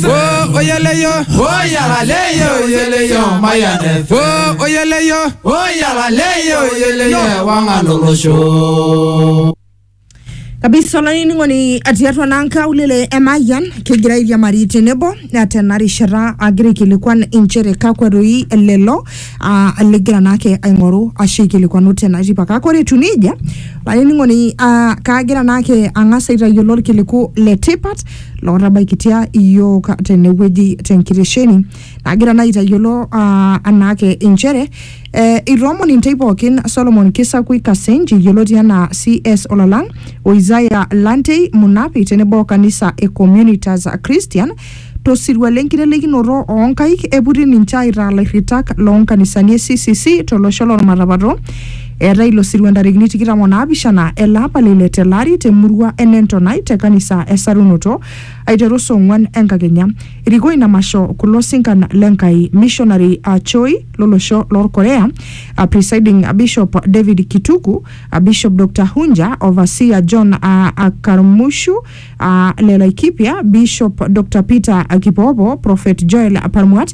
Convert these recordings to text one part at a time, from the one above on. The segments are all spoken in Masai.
Wo oyeleyo. Wo yàrá lẹ́yìn oyeleyo maya nẹ fẹ́. Wo oyeleyo. Wo yàrá lẹ́yìn oyeleyo ẹ̀wá ń alòrò ṣó. kabisa olainining'oni atii atua naa nkaulele e mayian kegira airiamari tenebo na tena rishata agira aikilikuan inchere kakwa doi lelo ah, ligira naake aing'oru ashu aikilikuanu tena tipa kake ore etiu nejia olainining'oni ah, kaagira naake ang'as aitayiolo orkiliku le tipat lootabaikitia iyiook tenewueji tenkitesheni nagira naa aitayiolo ah, anaake inchere eh, itoomon intei pookin Solomon Kisakui Kasenji yioloti anaa CS Olalang o Isaiah Lantei Munapi tenebo o kanisa e Communitas Christian tosirua lenkitelikinoto oonkaik eputi ninche aitaa lairritak loonkanisani e CCC tolosho lolmatapato Eetae ilo sirua ntarikini tikitam o naapishana ele apa le ile tele ari te murua e Nentonai te kanisa e Sarunoto aiteru saa ong'uan enkakenya. Erikoo ina masho kulo sinkan le Nkai, Missionary A Choi lo losho loo Korea, A Presiding Bishop David Kituku, A Bishop Doctor Hunja, Overseer John A A Karmushu, A le Laikipia, Bishop Doctor Peter Kipoopo, Prophet Joel Parmuat,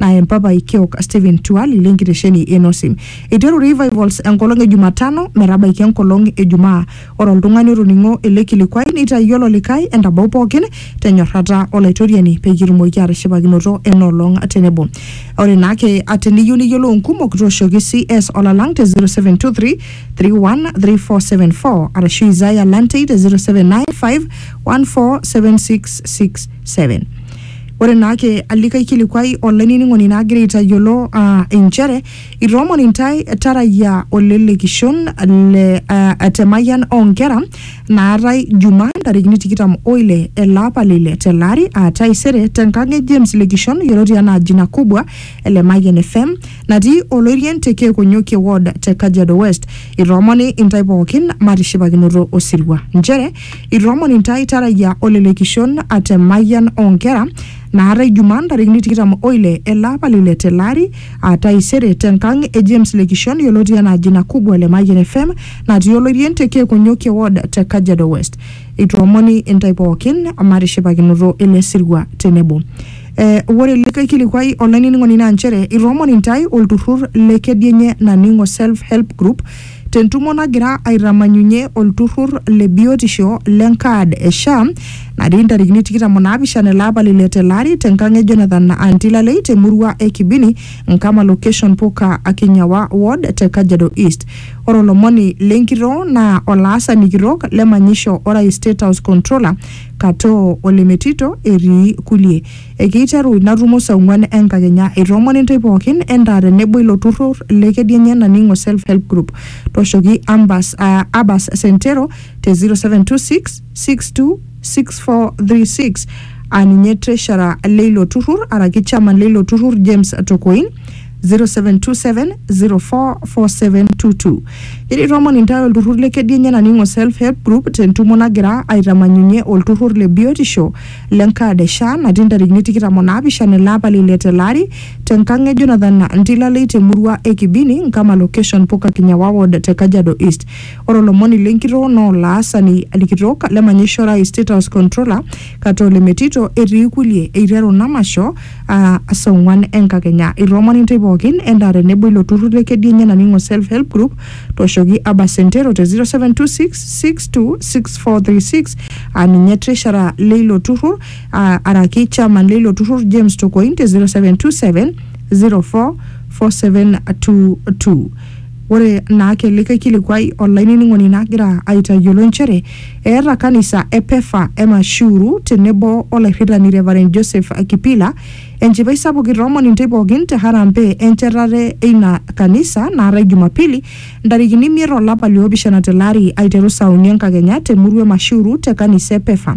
na empapai kiok Stephen Tuali le nkitesheni e Nosim. Eiteru Revivals enkolong e Jumatano metabaiki enkolong e Jumaa. Ore oltung'ani otoning'o ele kilikuai neitayiolo likae entabau pookin te nyorrata o Laitoriani pee kitumoki aatishipakinoto ena olong tenebo. Ore naa ake ate niyieu niyiolou nkumok tooshoki CS olalang te 0723 313474 arashu Isaiah Lantei te 0795 147667. Ore naake alikae kilikuai olainining'oni naagira aitayiolo aa inchere itoomon intae tarayia olelekishon le aa, te mayian oonkera naatae Jumaa ntarikini tikitam oile ele apa le ile tele ari aa taisere tenkang e James Lekishon yioloti anaa Jina Kubwa e Lemayian FM natii Oloirien te Keekonyokie Ward te Kajiado West. Itoomoni intae pookin matishipakinoto osirua nchere Itoomon intae Tarayia o Lele Kishon at Emayian oo Nkera naata Ijumaa ntarikini tikitam o ile ele apa le ile tele ari aa taisere te nkang e James Lekishon yioloti anaa Jina Kubwa le Mayian FM natii Oloirien te Keekonyokie Ward te Kajiado West. Itoomoni intae pookin matishipakinoto ele sirua tenebo. Eh, ore likae kilikuai olainining'oni naa nchere itoomon intae olturrur le Kedienye Naning'o Self Help Group Tentumo nagira aitamanyunye olturur le biotisho le nkaad e SHA natii ntarikini 27 ele apa lile telari tenkang e Jonathan Antilalei te murua e Kibini, Nkama location Puka Akinyawa ward te Kajiado East. Ore olomoni le nkitoo naa olaasani kitok le manyisho Orais State House Controller Katoo Olemetito etii kulie. Ekeiteru ina tumo saa ong'uan enkakenya. Eitoomono intae pooki endaa tenebo ilo turrur le Kedianye Naning'o Self Help Group. Tooshoki Ambas, uh, Abas Sentero te 0726 62 6436 aa ninye treasurer leilo turrur araki chairman leilo turrur James Tokoin 0727044722. Ore itoomon intae olturrur le Kedianye Naning'o Self Help Group tentumo nagira aitamanyunye olturrur le biotisho le nkaad e SHA natii ntarikini tikitam o naapishana ele apa le ile tele ari te nkang e Jonathan Ntilalei te murua e Kibini, Nkama location Puka Kinyawa ward te Kajiado East. Ore olomoni le nkitoo naa olaasani kitok le manyisho orais State House Controller kata ole metito etii kulie eiteru namasho aa saa ong'uan enkakenya. Itoomoni intae pookin endaa tenebo ilo turrur le Kedienye naning'o Self Help Group Tooshoki Abba Sentero te 0726626436 aa ninye treasurer leilo turrur aa araki chairman leilo turrur James Tokoin te 0727044722. Ore naake likae kilikuai olainining'oni nagira aitayiolo nchere eeta kanisa e Pefa e Mashuru tenebo olairritani Reverend Joseph Kipila Enchipai sapuk itoomon intei pookin te harambee enchetare eina kanisa naatae Jumapili ntarikini imiet o lapa li opishana tele ari aiteru saa uni enkakenya te murua e Mashiuru te kanisa e Pefa.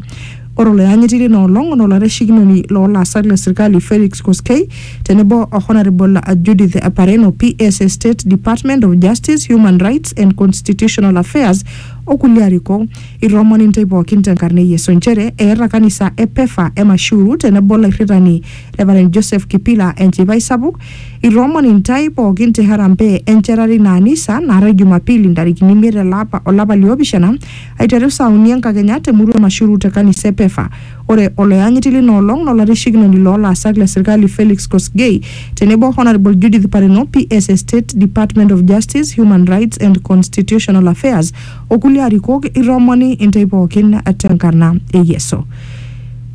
Ore oloyanyiti leina olong na olaitashekinoni loo laasak le sirkali Felix Koskei tenebo o Honaribol Judith Pareno, PS e State Department of Justice, Human Rights and Constitutional Affairs o kulie arikok. Itoomon intae pooki te nkarna e Yesu nchere eeta kanisa e Pefa e Mashuru tenebo olairritani Reverend Joseph Kipila enchipai sapuk. Itoomon intae pooki te harambee enchetare ina anisa naatae Jumapili ntarikini imiet ele apa o lapa liopishana aiteru saa uni enkakenya te murua e Mashuru te kanisa e Pefa. Ore oloyanyiti lina olong naa olaitashekinoni loo laasak le sirkali Felix Kosgei tenebo o Honourable Judith Pareno, PS e State Department of Justice, Human Rights and Constitutional Affairs, o kulie arikok itoomoni intae pookin tenkarna e Yesu.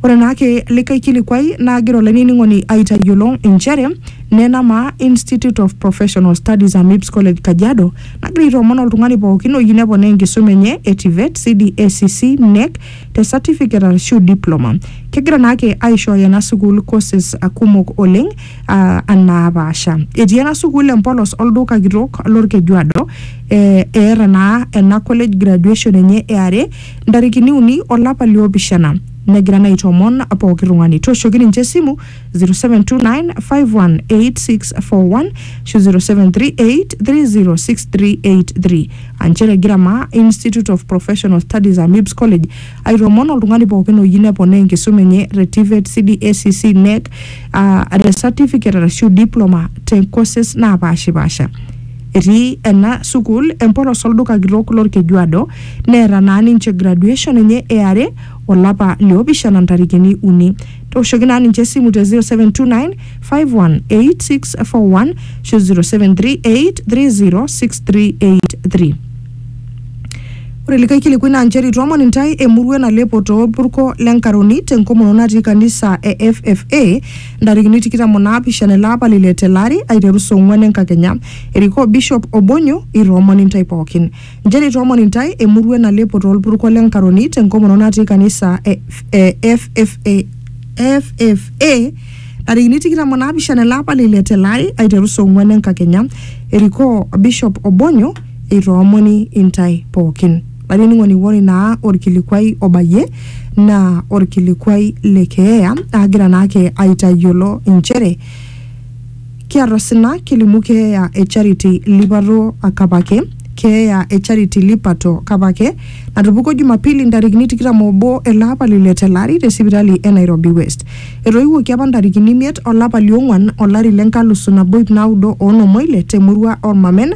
Ore naake likae kilikuai naagira olainining'oni aitayiolo inchere nena maa Institute of Professional Studies Amips College Kajiado nagira aitoomon oltung'ani pookin oyieu neponaa enkisuma enye e TVET, CDACC, NEC te certificate arashu diploma. Kegira naake aishooyo ena sukuul courses kumok oleng uh, naapasha. Etii ena sukuul empolos olduka kitok lolkejuado eh, eeta naa ena college graduation enye e are ntarikini uni olapa liopishana negira naa aitomon pooki tung'ani tooshoki ninche esimu 0729518641 ashu 0738306383 aa nchere egira maa institute of professional studies amibs college aitomon oltung'ani pookin oyieu neponaa enkisuma enye te tvet cdacc nec uh, te certificate arashu diploma te courses naapashipasha Etii ena sukuul empolos olduka kitok lolkejuado neeta naa ninche graduation enye e are olapa li opishana ntarikini uni. Tooshoki naa ninche esimu te 0729 518641 ashu 0738306383. Ore likae kilikuai naa nchere itoomon intae emurua nalepo too lpurko le Nkaroni te nkomono natii kanisa e FFA ntarikini tikitam o naapishana ele apa lile tele ari aiteru saa ong'uan enkakenya erikoo bishop obonyo itoomon intae pookin nchere itoomon intae emurua enalepo toolpurko le nkaroni tenkomono natii kanisa e, e ffa ffa ntarikini tikitam o naapishana ele apa lile tele ari aiteru saa ong'uan enkakenya erikoo bishop obonyo itoomoni intae pookin Olainining'oni ore naa orkilikuai obayie naa orkilikuai le keeya agira naake aitayiolo inchere kiata osina kilimu keeya e Charity Lipato Kapake keeya e Charity Lipato Kapake natupukuo Jumapili ntarikini tikitam obo ele apa le ile tele ari te sipitali e Nairobi West. Etoiwuoki apa ntarikini imiet olapa liong'wan olari le nkalusu nabo ip naudo oonom oile te murua Ormamen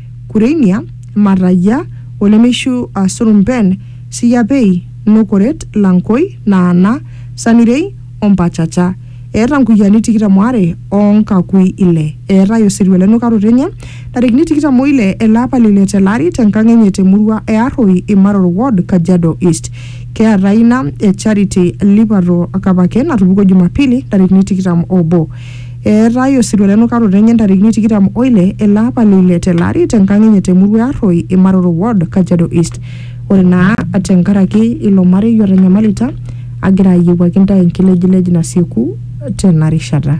Kureinia, Matayia, olemeishu aa Surumpen, Siyapei, Nokoret, Lankoi, Naana, Samirei o Mpachacha. Eeta nkuyiani tikitam o are o nkakui ile. Eetae osirua le nukaroto enye ntarikini tikitam o ile ele apa le ile tele ari te nkang enye te murua e Arroi, Imaror ward, Kajiado East. Keetae ina e Charity Lipato Kapake natupukuo Jumapili ntarikini tikitam o obo. Eetae osirua lenukaroto enye ntarikini tikitam oile ele apa le ile tele ari te nkang enye te murua e Arroi, Imaroro ward, Kajiado East. Ore naa te nkaraki ilo marei otanyamalita, agira ayiewuaki ntae enkilejilej nasieku tena rishata.